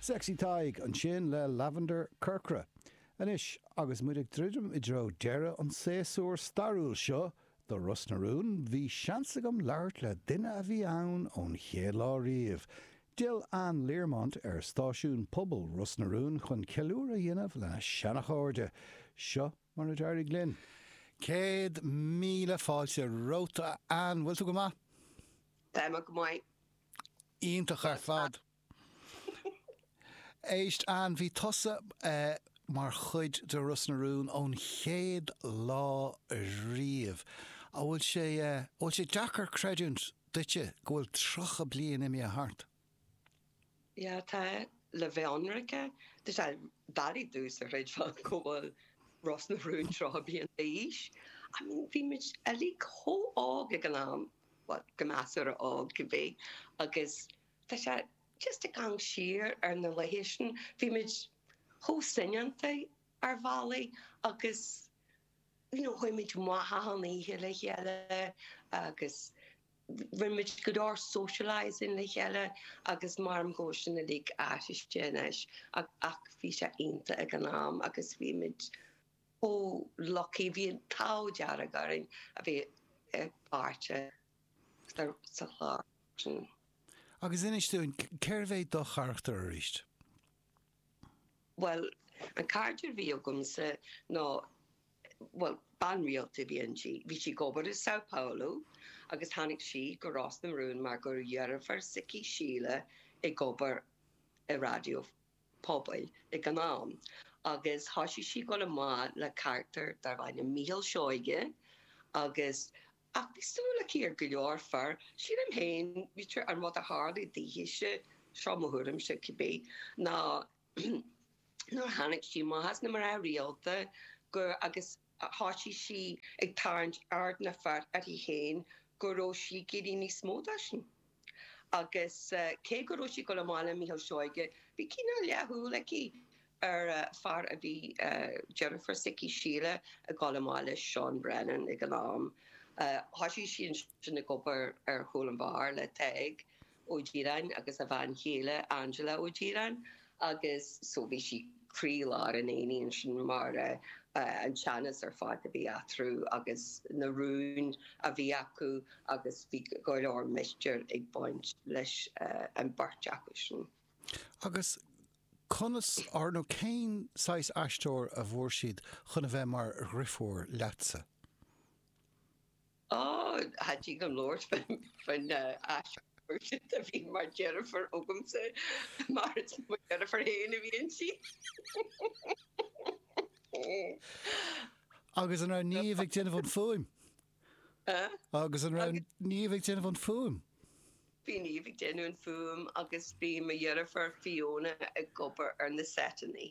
Sexy Tadhg ansin le Lavender Corcra. Anois, agus muid ag druidim i dtreo deireadh an tséasúir stairiúil seo de Ros na Rún, bhí seans agam labhairt le duine a bhí ann ón chéad lá riamh. D'fhill Anne Learmont ar stáisiún pobail Ros na Rún chun ceiliúradh a dhéanamh lena seanachairde. Seo mar a d'éirigh linn. Céad míle fáilte romhat, a Anne. Bhfuil tú go maith? Tá mé go maith. Iontach ar fad. Éist, Anne, bhí tusa mar chuid de Ros na Rún ón chéad lá riamh. An bhfuil sé, an bhfuil sé deacair creidiúint duitse go bhfuil tríocha bliain imithe thart? Yeah, tá, le bheith ionraice, tá sé doiligh domhsa a chreidbheáil go bhfuil Ros na Rún tríocha bliain d'aois. I mean, bhí muid uilig chomh hóg ag an am. Bhuel, go measartha óg cibé agus tá sé just ag gabháil siar ar na laetha sin. Bhí muid chomh soineanta ar bhealaí agus you know chuaigh muid amach achan oíche le chéile agus rinne muid go leor socialising le chéile agus maram go bhfuil sin uilig athraithe anois ach bhí sé iontach ag an am agus bhí muid chomh lucky, bhí an t-ádh dearg orainn a bheith páirteach sa chlár sin. Agus inis dúinn, cérbh é do charachtar arís? Bhuel, an carachtar a bhí agamsa ná, bhuel, bean rialta a bhí inti. Bhí sí ag obair i Sao Paulo agus tháinig sí go Ros na Rún mar go raibh deirfiúr s'aici, Síle, ag obair i Raidió. pobail ag an am agus thoisigh sí ag dul amach le carachtar darb ainm Micheál Seoige agus ach bhí súil aici ar go leor fear, sílim féin, b'fhéidir, an rud a tharlaigh daoithese, seo mo thuairimse, cibé, ná nuair a tháinig sí amach as na mná rialta, gur, agus. Thosaigh sí ag tarraingt aird na bhfear uirthi féin go raibh sí ag iarraidh níos mó de sin. Agus cé go raibh sí ag dul amach le Micheál Seoige, bhí cineál leathshúil aici ar fear a bhí deirfiúr s'aici, Síle, ag dul amach le Seán Brennan ag an am. Thosaigh sí ansin ag obair ar chúl an bheáir le Tadhg. Ó Direáin agus a bhean chéile Angela Ó Direáin agus so bhí sí croílár an aonaigh ansin mar an teannas ar fad a bhí eatarthu agus na rúin a bhí acu agus bhí go leor mistéir ag baint leis an bheirt acu sin. Agus conas or nó cén saghas aisteoir a bhfuair siad chun a bheith mar dhriofúr leatsa? Á, tá sí gan labhairt faoin aisteoir sin a bhí mar deirfiúr agamsa, mar is mo dheirfiúr féin a bhí inti. Agus an raibh Niamh ag déanamh an fuaim? Agus an raibh Niamh ag déanamh an fuaim? Bhí Niamh ag déanamh an fuaim agus bhí mo dheirfiúr Fiona ag obair ar na seiteanna.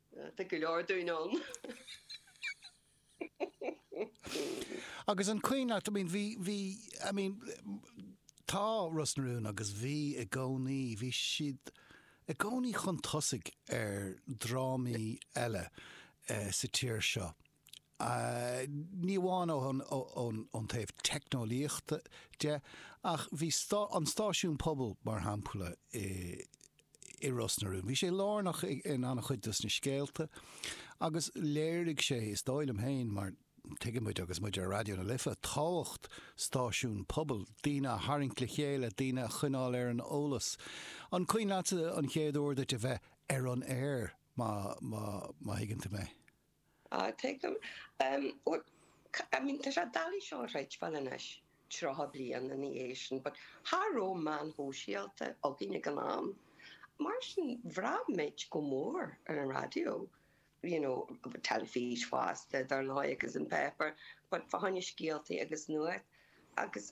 Tá go leor dínn ann. Agus an cuimhin leat I mean bhí bhí I mean tá Ros na Rún agus bhí i gcónaí bhí siad i gcónaí chun tosaigh ar drámaí eile eh, sa tír seo. ní amháin ón taobh teicneolaíochta de ach bhí an stáisiún pobail, mar shampla, i Ros na Rún. Bhí sé lárnach in an-chuid dos na scéalta agus léirigh sé, is dóigh liom féin, mar tuigeann muid agus muid ar Raidió na Life, tábhacht stáisiún pobail, daoine a tharraingt le chéile, daoine a choinneáil ar an eolas. An cuimhin leatsa an chéad uair duit a bheith ar an aer, má má thuigeann tú mé? Ah, tuigim. I mean, tá sé doiligh seo a chreidbheáil anois, tríocha bliain ina dhiaidh sin, but cha raibh meáin shóisialta againn ag an am. Mar sin, bhraith muid go mór ar an raidió, you know, teilifís fosta, dar ndóigh, agus an paper, but tháinig na scéaltaí agus nuacht, agus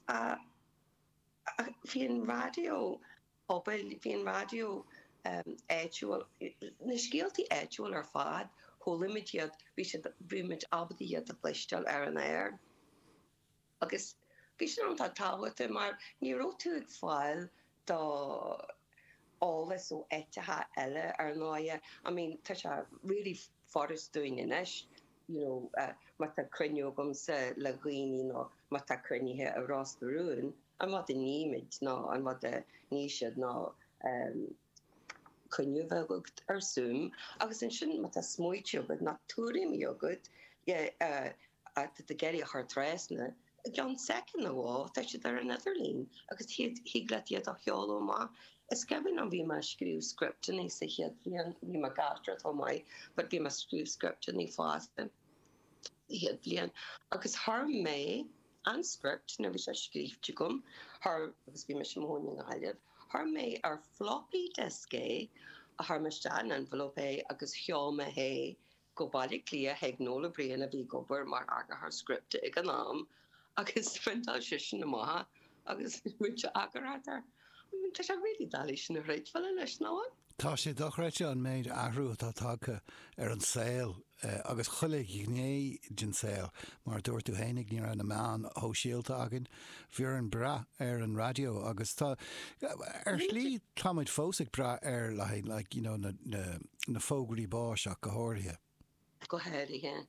bhí an raidió. pobail, bhí an raidió áitiúil, na scéaltaí áitiúil ar fad, chualaimid iad, bhí sé, bhí muid ábalta iad a chluinstean ar an aer. Agus bhí sin iontach tábhachtach mar ní raibh tú ag fáil do eolas ó áiteacha eile, ar ndóigh. I mean, tá sé really furast dúinn anois you know, má tá cruinniú agamsa le daoine nó má tá cruinnithe i Ros na Rún, an rud a nímid nó an rud a níos siad nó cruinniú a bheith agat ar Zoom agus ansin má tá smaointe agat ná tuairimí agat, tá tú in ann a chur trasna I gceann soicind nó dhó, tá siad ar an idirlíon agus thig leat iad a sheoladh amach. Is cuimhin liom, bhí mé ag scríobh scripteanna sa chéad bhliain, bhí mé ag aisteoireacht chomh maith, but bhí mé ag scríobh scripteanna fosta sa chéad bhliain agus chuir mé an script, nuair a bhí sé scríofa agam, chuir, agus bhí mise i mo chónaí i nGaillimh, chuir mé ar floppy disk é, chuir mé isteach in envelope é agus sheol mé é Go Baile Átha Cliath chuig Noel O Brien a bhí ag obair mar eagarthóir scripte ag an am agus phriontáil seisean amach é agus rinne sé eagarthóireacht air. Tá sé really doiligh a chreidbheáil anois, nach bhfuil? Tá sé dochreidte an méid athrú atá tagtha ar an saol agus chuile ghné den saol. Mar a dúirt tú fhéinig, ní raibh na meáin shóisialta againn. Bhí orainn brath ar an raidió agus tá, ar shlí, tá muid fós ag brath air le haghaidh like you know na fógraí báis ach go háirithe. Go háirithe,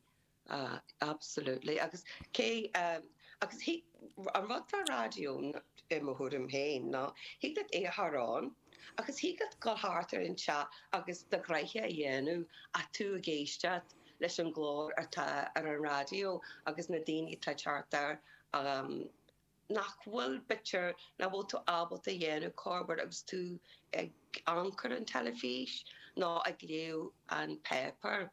absolutely agus cé, agus thig, an rud faoi raidió i mo thuairim féin ná thig leat é a chur air agus thig leat dul thart ar an teach agus do ghnaithe a dhéanamh ach tú ag éisteacht leis an nglór atá ar an raidió agus na daoine atá thart orm nach bhfuil bitir, nach bhfuil tú ábalta a dhéanamh cuir i gcás agus tú ag amharc ar an teilifís nó ag léamh an pháipéir.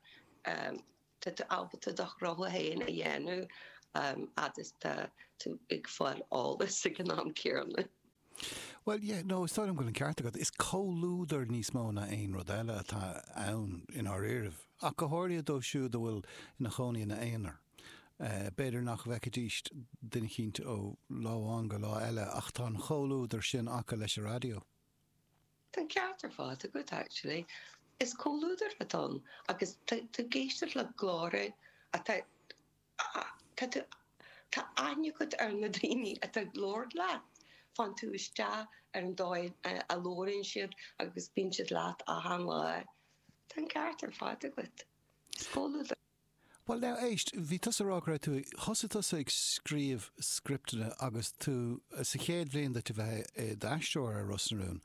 Tá tú ábalta do rogha féin a dhéanamh fhad is tá tú ag fáil eolas ag an am céanna. Bhuel, yeah, no, is dóigh liom go bhfuil an ceart agat. Is comhluadar níos mó ná aon rud eile atá ann i ndáiríribh, ach go háirithe dóibh siúd a bhfuil ina chónaí ina n-aonar. B'fhéidir nach bhfeicfidís duine éicint ó lá amháin go lá eile ach tá an chomhluadar sin acu leis an raidió. Tá an ceart ar fad agat, actually. Is comhluadar atá ann agus tú ag éisteacht le cláir atá Tá tú, tá tú, tá aithne agat ar na daoine atá ag labhairt leat. Faigheann tú isteach ar an dóigh a labhraíonn siad agus bíonn siad leat achan lá. Tá an ceart ar fad agat. Is comhluadar. Bhuel now, éist, bhí tusa a rá go raibh tú, thosaigh tusa ag scríobh scripteanna agus tú sa chéad bhliain duit a bheith i d'aisteoir ar Ros na Rún.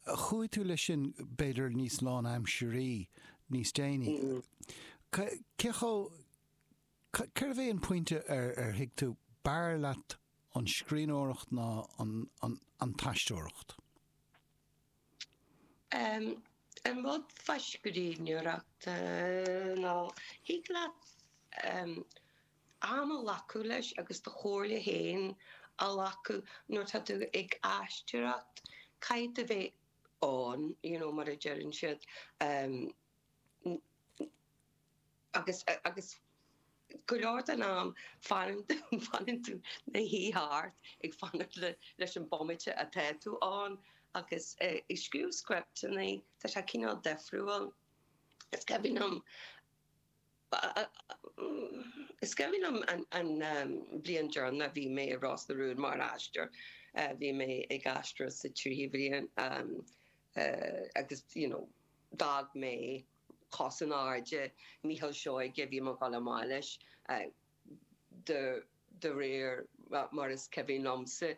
Chuaigh tú leis sin b'fhéidir níos lánaimsirí níos déanaí. Cé chomh, Cérbh é an pointe ar thuig tú, b'fhearr leat an scríbhneoireacht ná an t-aisteoireacht? An rud faoi scríbhneoireacht ná thig leat am a ghlacadh leis agus do chomhairle féin a ghlacadh. Nuair atá tú ag aisteoireacht, caithfidh tú bheith ann, you know, mar a deireann siad. Agus go leor den am, fanann tú i do shuí thart ag fanacht leis an bhomaite atá tú ann. Agus ag scríobh scripteanna, tá sé cineál difriúil. Is cuimhin liom Bhuel is cuimhin liom an bhliain deireanach a bhí mé i Ros na Rún mar aisteoir, bhí mé ag aisteoireacht sa tríú bhliain agus you know d'fhág mé cos in airde Micheál Seoige, bhí mé ag dul amach leis, de réir mar is cuimhin liomsa.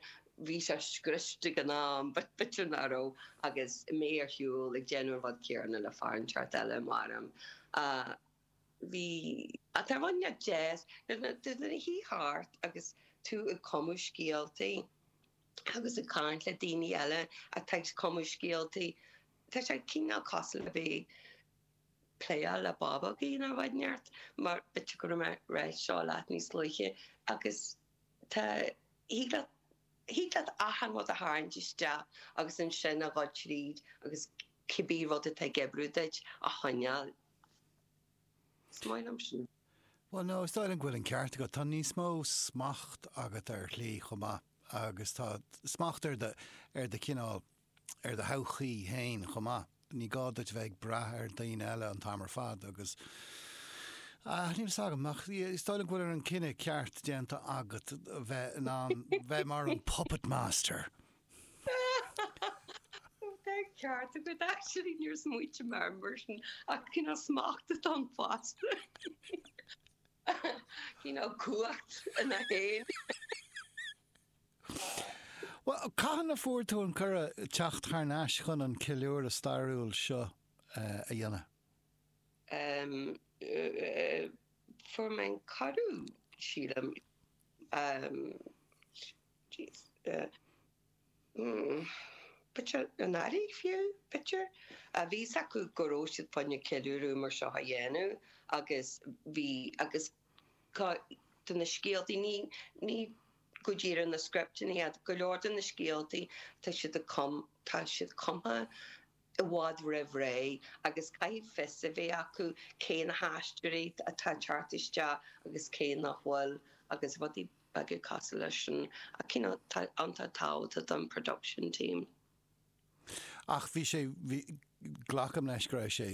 Bhí sé scriosta ag an am, b'fhéidir ná raibh, agus mé ar shiúl ag déanamh an rud céanna le fear inteacht eile, maram. Bhí. Tá rud inteacht deas, nuair a shuigh thart agus tú ag cumadh scéaltaí agus ag caint le daoine eile atá ag cumadh scéaltaí, tá sé cineál cosúil le bheith, pléáil le bábógaí nó rud inteacht mar b'fhéidir go raibh mé ag rá seo leat níos luaithe agus tá thig leat thig leat achan rud a tharraingt isteach agus ansin a dhul tríd agus cibé rud atá ag oibriú duit a choinneáil. Is maith liom sin. Bhuel no, is dóigh liom go bhfuil an ceart agat. Tá níos mó smacht agat ar shlí chomh maith agus tá smacht ar do ar do cineál ar do thodhchaí féin chomh maith. Ní gá duit bheith ag brath ar dhaoine eile an t-am ar fad agus níl a fhios agam ach is dóigh liom go bhfuil an cinneadh ceart déanta agat bheith in ann bheith mar an puppet master. Tá an ceart agat actually, níor smaoitigh mé air mar sin ach cineál smacht atá ann fosta, cineál cumhacht ina haon. Cathain a fuair tú an cuireadh teacht thar n-ais chun an ceiliúradh stairiúil seo a dhéanamh? Fuair mé an cuireadh, sílim, anuraidh, fiú, b'fhéidir. Bhí a fhios acu go raibh siad fá choinne ceiliúradh mar seo a dhéanamh agus bhí, agus, De na scéaltaí, ní go díreach na scripteanna ach, go leor de na scéaltaí, tá siad tá siad cumtha i bhfad roimh ré agus caithfidh fios a bheith acu cé na haisteoirí atá ag teacht isteach agus cé nach bhfuil agus rudaí beaga cosúil leis sin ach you know tá an-tábhacht don production team. Ach bhí sé, bhí, glacaim leis go raibh sé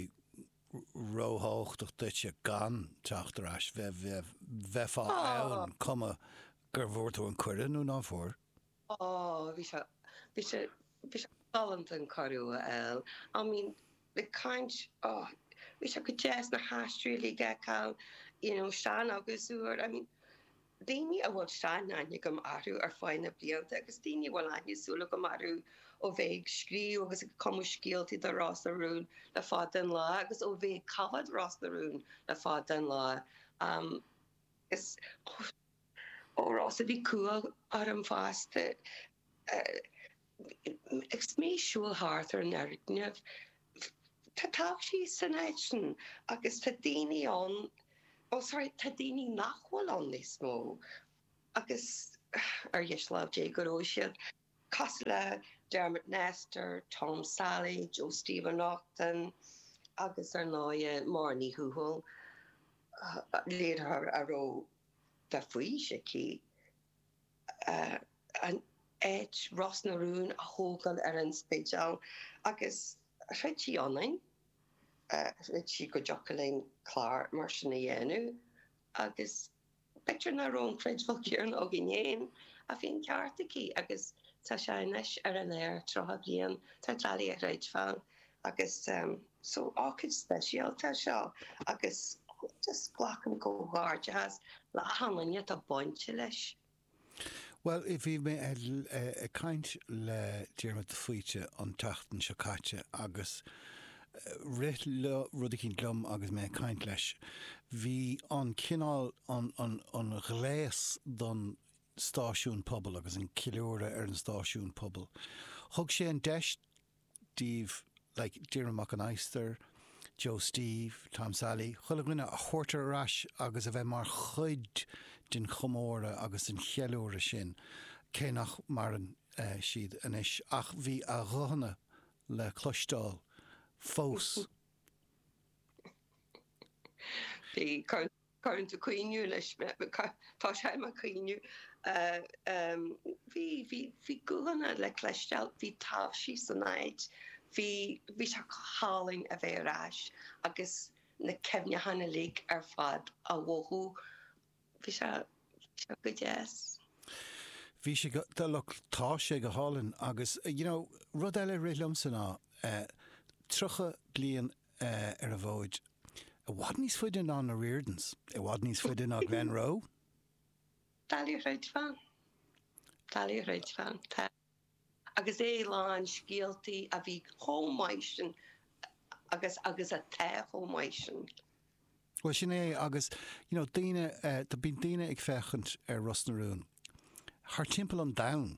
róthábhachtach duitse gan teacht ar ais, bheith, bheith, bheifeá ann cuma gur bhfuair tú an cuireadh nó ná fuair? Ó, bhí sé, bhí sé, bhí sé galánta an cuireadh a fháil. I mean, like cinnte, ó, bhí sé go deas, na haisteoirí uilig a fheiceáil, you know, Seán agus uair, I mean, daoine a bhfuil sean-aithne agam orthu ar feadh na blianta agus daoine a bhfuil aithne súl agam orthu ó bheith ag scríobh agus ag cumadh scéaltaí do Ros na Rún le fada an lá agus ó bheith ag coimhéad Ros na Rún le fada an lá. Agus ó, Rossa, bhí cumha orm fosta. Is mé ag siúl thart ar an fhoirgneamh. Tá taibhsí san áit sin agus tá daoine ann, bhuel, sorry, tá daoine nach bhfuil ann níos mó agus, ar dheis lámh Dé go raibh siad, cosúil le Dermot Nestor, Tom Sailí, Joe Steve Ó Neachtain agus, ar ndóighe, Máire Ní Thuathail, léiritheoir a raibh fís aici. an áit, Ros na Rún, a thógáil ar an Spidéal agus chreid sí ionainn, chreid sí go dtiocfadh linn clár mar sin a dhéanamh agus b'fhéidir nach raibh an creidbheáil céanna againn féin ach bhí an ceart aici agus tá sé anois ar an aer, 30 bliain, tá sé doiligh a chreidbheáil agus. so ócáid speisialta é seo agus just glacaim comhghairdeachas le achan duine atá bainte leis. Bhuel, bhí mé ag caint le Diarmuid de Faoite an tseachtain seo caite agus rith rud eicínt liom agus mé ag caint leis. Bhí an cineál, an ghléas don stáisiún pobail agus an ceiliúradh ar an stáisiún pobail, thug sé an deis daoibh like Diarmuid Mac an Adhastair, Joe Steve, Tom Sailí, chuile dhuine a thabhairt ar ais agus a bheith mar chuid den chomóradh agus den cheiliúradh sin, cé nach maireann siad anois. Ach bhí a nguthanna le cloisteáil fós. Bhí cur. Cuireann tú ag caoineadh anois mé. Tosóidh mé ag caoineadh. Bhí guthanna le cloisteáil, bhí taibhsí san áit, bhí sé go hálainn a bheith ar ais agus na cuimhneacháin uilig ar fad á mhothú. Bhí sé go deas. Bhí sé go, look, tá sé go hálainn agus, you know, rud eile a rith liomsa ná, 30 bliain ar an bhfód. I bhfad níos faide ná na Riordans. I bhfad níos faide ná Glenroe. Doiligh a chreidbheáil. Doiligh a chreidbheáil. Agus é lán scéaltaí a bhí chomh maith sin agus agus atá chomh maith sin. Bhuel, sin é agus, you know, daoine, bíonn daoine ag féachaint ar Ros na Rún thart timpeall an domhain.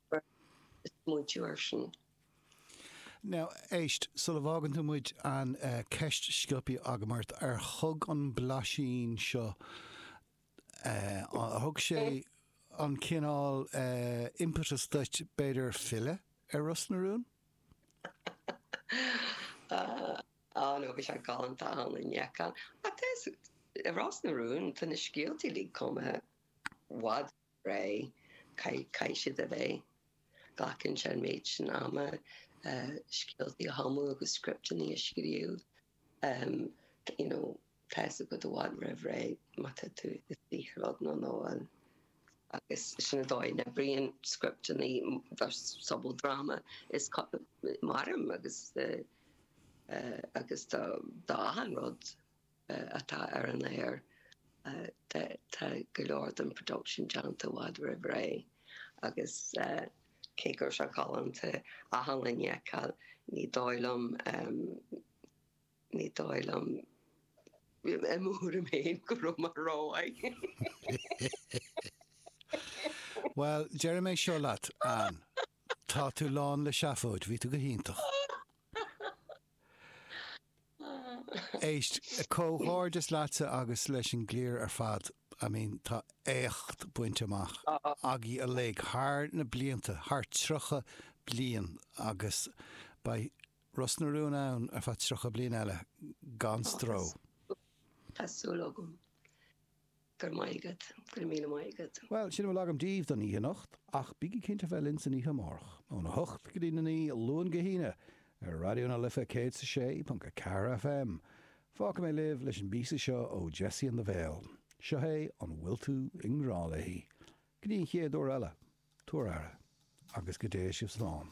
Bhuel, ag smaointiú air sin. Now, éist, sula bhfágann tú muid an ceist sciobtha agam ort, ar thug an blaisín seo, ar thug sé an cineál impetus duit, b'fhéidir, filleadh ar Ros na Rún? Á nó bhí sé galánta achan duine a fheiceáil. Ach, Ros na Rún, tá na scéaltaí uilig cumtha i bhfad. Ré, caithfidh siad a bheith. Glacann sé an méid sin ama, scéaltaí a chumadh agus scripteanna a scríobh. You know, tá a fhios agat i bhfad roimh ré, má tá tú i saothar rud nó nach bhfuil. Agus sin an dóigh a n-oibríonn scripteanna, do sobaldráma, is mairim agus d'achan rud. atá ar an aer tá go leor den production déanta i bhfad roimh ré agus cé go raibh sé galánta achan duine a fheiceáil ní dóigh liom ní dóigh liom i mo thuairim féin go raibh mé rómhaith. Bhuel déarfaidh mé seo leat Anne tá tú lán le seafóid bhí tú go hiontach. Éist, comhghairdeas leatsa agus leis an gcliar ar fad. I mean, tá éacht bainte amach agaibh uilig thar na blianta, thar 30 bliain agus beidh Ros na Rún ann ar feadh 30 bliain eile gan stró. Tá súil agam. Go raibh maith agat. Go raibh míle maith agat. Bhuel, sin a bhfuil agam díbh don oíche anocht, ach bígí cinnte a bheith linn san oíche amárach, óna hocht go dtí na naoi, Luan go hAoine, ar Raidió na Life 106.4 FM. Fágfaidh mé libh leis an bpíosa seo ó Jessie and the Veil. Seo é An Bhfuil Tú i nGrá Léi? Go dtí an chéad uair eile, tabhair aire, agus go dté sibh slán.